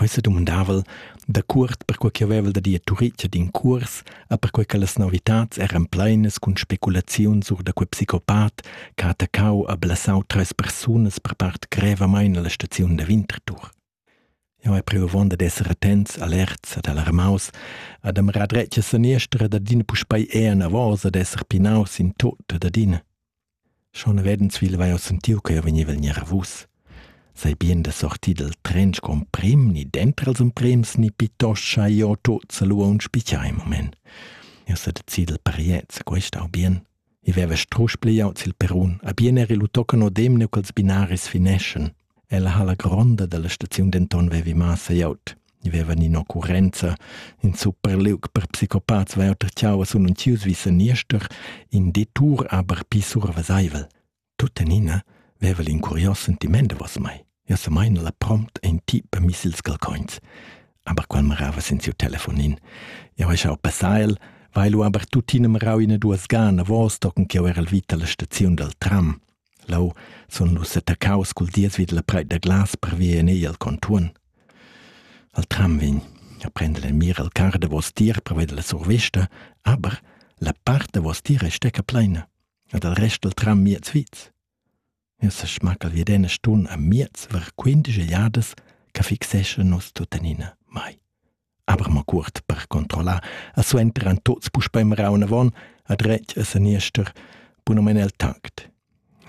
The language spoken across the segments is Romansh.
Quei sedumandav'el dacuort perquei ch'jeu vevel da dir Turitg ad in cuors e perquei che las novitads eran pleinas cun speculaziuns sur da quei psicopat che ha attaccau e blessau treis persunas per part grevamein alla staziun da Winterthur. Jeu hai priu avunda d'esser attents, alerts ed alarmaus ed ham era dretg a seniester ed adina puspei enavos ed esser pinaus in tut ed adina. Schon vedens vegl vai jeu sentiu che jeu vegneva en gnanavus. Sai bien da sortir dal tren sco emprim, ni denter els emprems, ni pittoscha jeu tuts a lu aunc spitgai in moment. Jeu sa decid dal pariez, quest au bien. I veva strusch pliaut sil perun, a bien eri lu tocan odem ne quels binaris fineschen. Ella halla gronda dalla staziun denton vevi massa glieud. I vevan in'occurrenza. In superliug per psicopats vai auter tgau a sununtius vi seniester, in detour aber pli surveseivel. Tuttenina veva l'incurios sentiment davos mai. Ja sa meina la prompt ein ti per missils galcoins. Aber qual marava sen siu telefonin. Ja vai schau passail, weil lu aber tuttina marau ina duas gana vos tocken che era al vita la staziun dal tram. Leu sun nus settaccaus cul dies vid la preit da glas per via en egl al contuorn. Al tram vegn a prender en mir il carr davos tier per veder la survesta, aber la part davos tier ei stecca pleina ed il rest dal tram miez viz. Eu sa schmaccal vi d'ena stun a miez ver quindisch egliadas che fixeschan nus tuttenina mai. Aber mo cuort per controllar, a suenteran tuts puspei meraun avon, a dretg a seniester, bunumen el tact.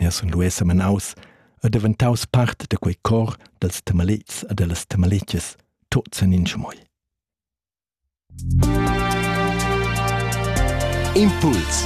Ja sun lu essa menaus, a daventaus part de quei cor dels temalits a dellas temalitges, tuts en in schmoi. Impuls